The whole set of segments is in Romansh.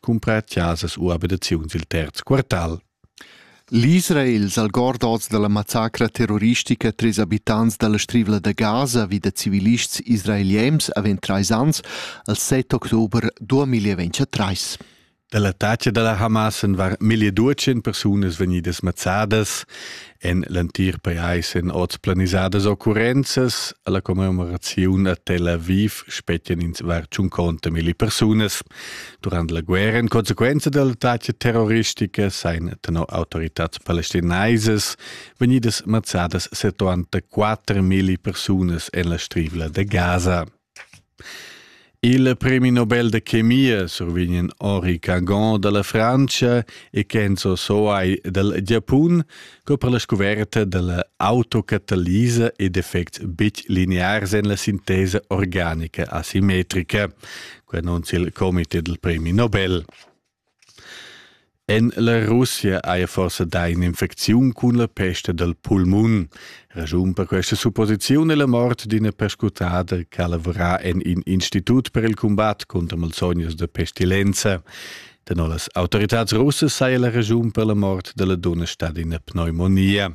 cumpra chasas u abitaziuns il terz quartal. L'Israel s'algord oz dalla massacra terroristica tres habitants dalla Strivla da Gaza vi da civilists israeliems avant trais ans al 7 october 2023. Dall'attacca dalla Hamas waren meglio 200 persunas vegnidas mazzadas en l'entir pajais en oz planisadas occurrenzas alla commemoraziun a Tel Aviv spettian ins var 50 milli persunas. Durant la guerra in conseguenza dell'attacco terroristica seien tenor autoritats palestinaisas vegnidas mazzadas 74 milli persunas en la strivla de Gaza. Il premi Nobel da chemia survegn ori Cangon dalla Frantscha e Kenzo Soai dal Giapun co per la scuverta dalla autocatalisa ed effects betg linears en la sintesa organica asimetrica. Quei annunzia il comite dal premi Nobel. En la Russia haja forsa dà in'infecziun cun la pesta dal pulmun. Raschun per questa supposiziun è la mort d'ina perscrutada che ha lavorà en in institut per il cumbat cunter malsognas da pestilenza. Tenor las autoritads russas saja la raschun per la mort della dunna stata ina pneumonia.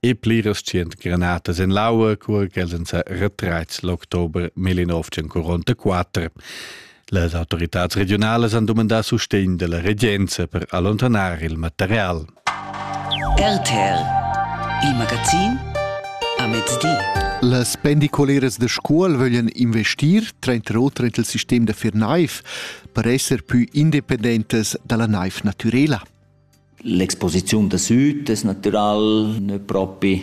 e pliras tschient granatas en l'aua, cura ch'els èn sa retraits l'october 1944. Las autoritads regiunalas han dumandà sustegn da la regenza per allontanar il material. RTL, il magazin a mezdi. Las pendicoleras da scuol vöglien investir tranter oter int il sistem da fer naiv per esser pü independentas dalla naiv natürela. L'exposiziun da süt es natüral gnü propi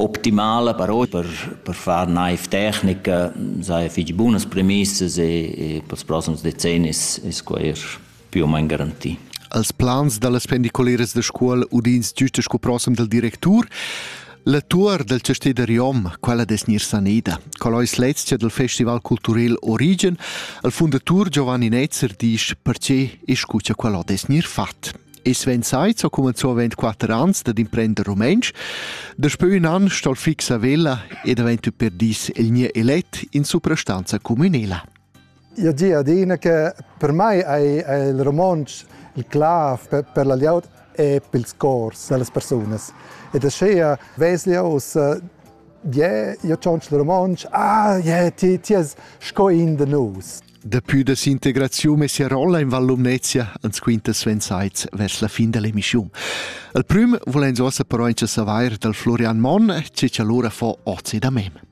optimala, però per, per far naiv tecnica saja fich bunas premissas e, e pels prossims decennis es quai eir più o main garantì. Als plans da las pendiculeras da Scuol udins güsta sco prossem dal directur. La tuor dal chastè da Riom, quella dess gnir saneda. Qual ais l'ezia dal festival culturel Origen? Il fundatur Giovanni Netzer disch perche e scucha quella dess gnir fat. E Sven Seitz ha cumanzò avent 4 ans dad imprender rumentsch. Daspö ün an sta'l fix a Vella ed avent per dis el gnir elet in suprastanza cumünela. Io gi adina che per mai ei, ei il romontsch il clav per, per la glieud e per ils cors dallas persunas. Ed aschia vesli oz yeah, io tschonsch il romontsch, ah, yeah, ti, ti es sco in de nus. Dapü da sintegraziun e sia rolla in Val Lumnezia ans quinta Sven Seitz vers la fin dell'emissiun. Al prüm volens ossa però incha savair dal Florian Monn, che cha lura fo ozi da mem.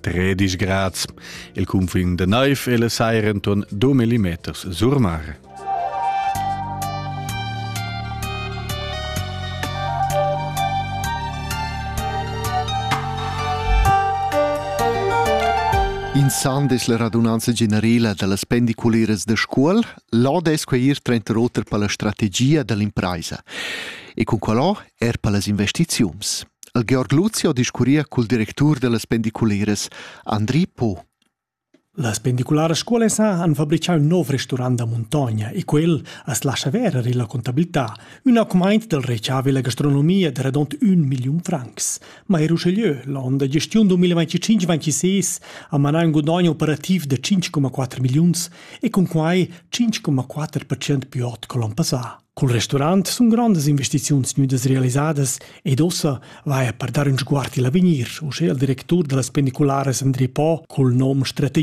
Tredisch grads, il cunfin de neiv e le sair enton 2 millimeters sur mare. In san des la radunanza generela dallas pendiculeras da Scuol, là des quei ir trenter oter per la strategia dall'impresa. E con quellò er per las investiziuns. El Georg Luzio discurria cul directur dellas pendiculeras Andri Po. Las pendicularas scuolas han fabrichau un nov restaurant da muntogna e quel as lascha verer illa contabilità ün augmaint del reciavi la gastronomia de redont un milliun francs. Ma er uschelieu, l'on da gestiun 2025-26 ha manà un gudogno operativ de 5,4 milliuns e cun quai 5,4% più ot che l'on passà. Cul restaurant sun grondas investiziuns gnüdas realisadas ed ussa vaja per dar ün sguard i'l avegnir, uschè al directur da las pendicularas Andri Po cul nom Strategia